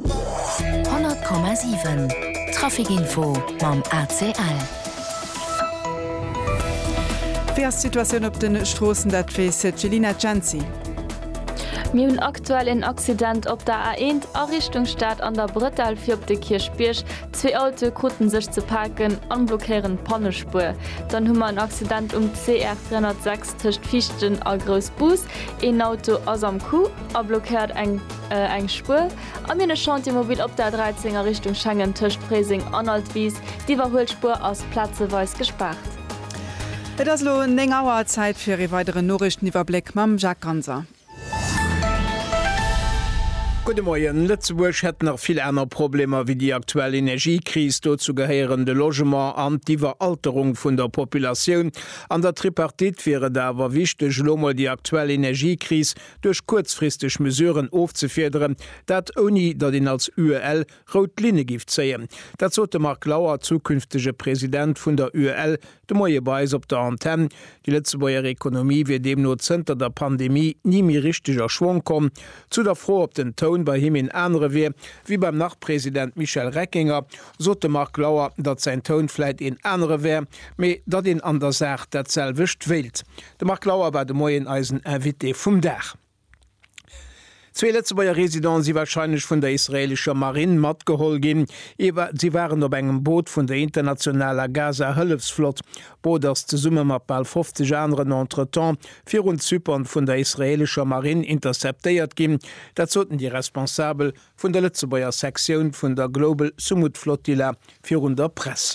100,7 Trafic-Info mam ACL. Wéi ass d'Situatioun op de Stroossen? Dat weess d'Jelina Cenci. Mir hunn aktuell en Accident op der A1 a Richtung Stad an der Brettell fir op de Kierchbierg. Zwee Autoe kruten sech ze paken an blockéieren d'Pannespuer. Dann hu mer en Accident um CR 306 tëscht Viichten a Groussbus. Een Auto ass am Coup a blockéiert eng. eng Spuer a mir ne Chantier mobil op der A 13 a Richtung Schengen tëscht Fréiseng an Altwis. D'Iwwerhuelspuer ass plazeweis gespaart. Et ass elo 9 Auer, Zäit fir ee weideren Noriichteniwwerbléck mam Jacques Ganser. Gudde Moien. Lëtzebuerg hätt nach vill aner Problemer wéi déi aktuell Energiekris. Dozou gehéieren de Logement an d'Iwweralterung vun der Populatioun. An der Tripartite wier et awer wichteg, elo mol déi aktuell Energiekris duerch kuerzfristeg Mesuren ofzefiederen, dat ouni datt een als UEL rout Linne giff zéien. Dat sot de Marc Lauer, zukünftege President vun der UEL, de Moie bei eis op der Antenn. Déi Lëtzebuerger Ekonomie wier deemno zënter der Pandemie ni méi richteg a Schwong komm. Zu der Fro, ob den Toun bei him een anere wier wéi beim Nach-President Michel Reckinger, sot de Marc Lauer, datt säin Toun vläit een anere wär, mee datt een an der Saach dat selwecht wéilt. De Marc Lauer war de Moien eisen Invité vum Dag. Zwee Lëtzebuerger Residenten si warscheinlech vun der israeelescher Marinn matgeholl ginn. Si waren op engem Boot vun der internationaler Gaza-Hëllefsflott. D'Boot ass zesumme mat bal 50 aneren entretemps virun Zypern vun der israeelescher Marinn interceptéiert ginn. Dat soten déi Responsabel vun der Lëtzebuerger Sektioun vun der Global Sumud Flotilla virun der Press.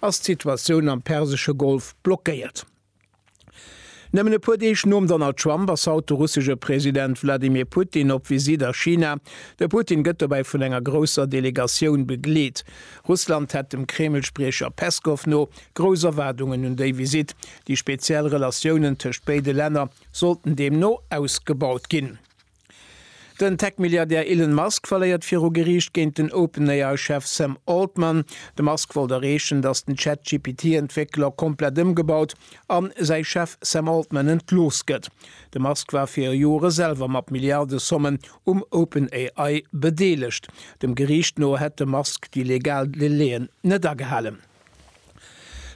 ass d'Situatioun am persesche Golf blockéiert. Nëmmen e puer Deeg nom Donald Trump ass haut de russesche President Wladimir Putin op Visitt a China. De Putin gëtt dobäi vun enger grousser Delegatioun begleet. Russland hätt dem Kreml-Spriecher Peskow no grouss Erwaardungen un déi Visitt. Déi speziell Relatiounen tëscht béide Länner sollten deemno ausgebaut ginn. Den Tech-Milliardär Elon Musk verléiert viru Geriicht géint den OpenAI-Chef Sam Altman. De Musk wollt erreechen, datt den ChatGPT-Entwéckler komplett ëmgebaut a säi Chef Sam Altman entlooss gëtt. De Musk war fir Jore selwer mat Milliardesommen um OpenAI bedeelegt. Dem Geriicht no hätt de Musk déi legal Delaien net agehalen.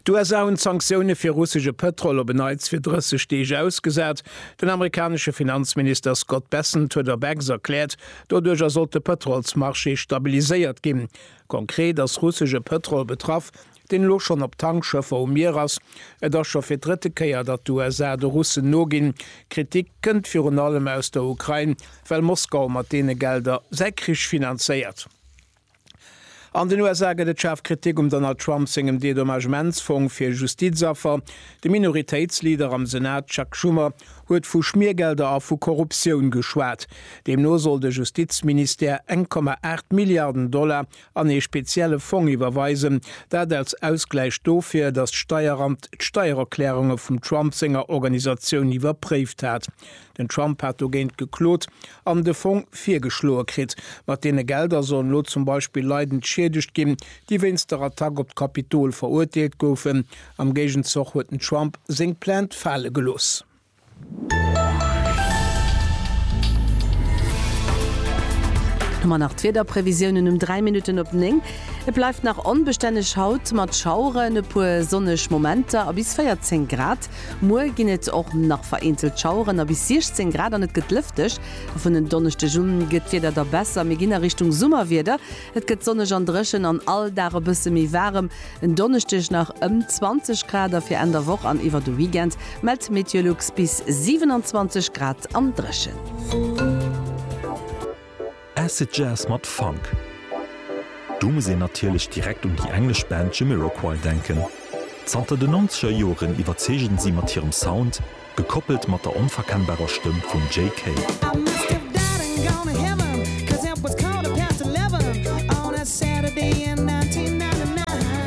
D'USA hunn d'Sanktioune fir russesche Pëtrol op en Neits fir 30 Deeg ausgesat. Den amerikanesche Finanzminister Scott Bessent huet op Ex erkläert, doduercher sollt de Pëtrolsmarché stabiliséiert ginn. Konkret ass russesche Pëtrol betraff, deen elo schonn op Tankschëffer um Mier ass. Et ass scho fir d'drëtte Kéier, datt d'USA de Russen noginn. Kritik kënnt virun allem aus der Ukrain, well Moskau mat deene Gelder säi Krich finanzéiert. An den USA gëtt et schaarf Kritik um Donald Trump sengem Dedommagementsfong fir Justizaffer. De Minoritéitsleader am Senat Chuck Schumer huet vu Schmiergelder a vu Korruptioun geschwat. Deemno soll de Justizministère 1,8 Milliarden Dollar an ee spezielle Fong iwwerweisen, dat als Ausgläich dofir, datt d'Steieramt d'Steiererklärunge vum Trump senger Organisatioun iwwerpréift hat. Den Trump hat dogéint geklot an de Fong virgeschloe kritt. Mat deene Gelder sollen elo zum Beispill Leit entschiedegt ginn, déi wéinst der Attack op d'Kapitol verurteelt goufen. Am Géigenzoch huet den Trump seng Plainte fale gelooss. Hu mer nach d'Wiederprevisiounen um 3 Minutten op 9. Et bleift nach onbestänneg haut mat Schaueren, e puer sonneg Momenter a bis 14 Grad. Muer ginn et och nach vereenzelt Schaueren a bis 16 Grad an et gëtt lëfteg. Vun en Donneschdeg un gëtt d'Wieder da besser, mir ginn a Richtung Summerwieder. Et gëtt sonneg an dréchen an all Dag e bësse méi waarem. En Donneschdeg nach ëm 20 Grad a fir Enn der Woch an iwwer de Weekend mellt Meteolux bis 27 Grad an dréchen. Acid Jazz mat Funk. Do muss een natierlech direkt un déi englesch Band Jamiroquai denken. Zanter den nonzeger Joren iwwerzeegen si mat hirem Sound, gekoppelt mat der onverkennbarer Stëmm vum Jay Kay.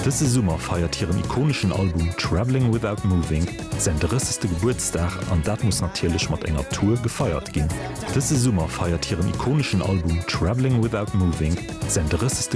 Dëse Summer feiert hiren ikoneschen Album Travelling Without Moving säin 30. Gebuertsdag an dat muss natierlech mat enger Tour gefeiert ginn. Dëse Summer feiert hiren ikoneschen Album Travelling Without Moving säin 30.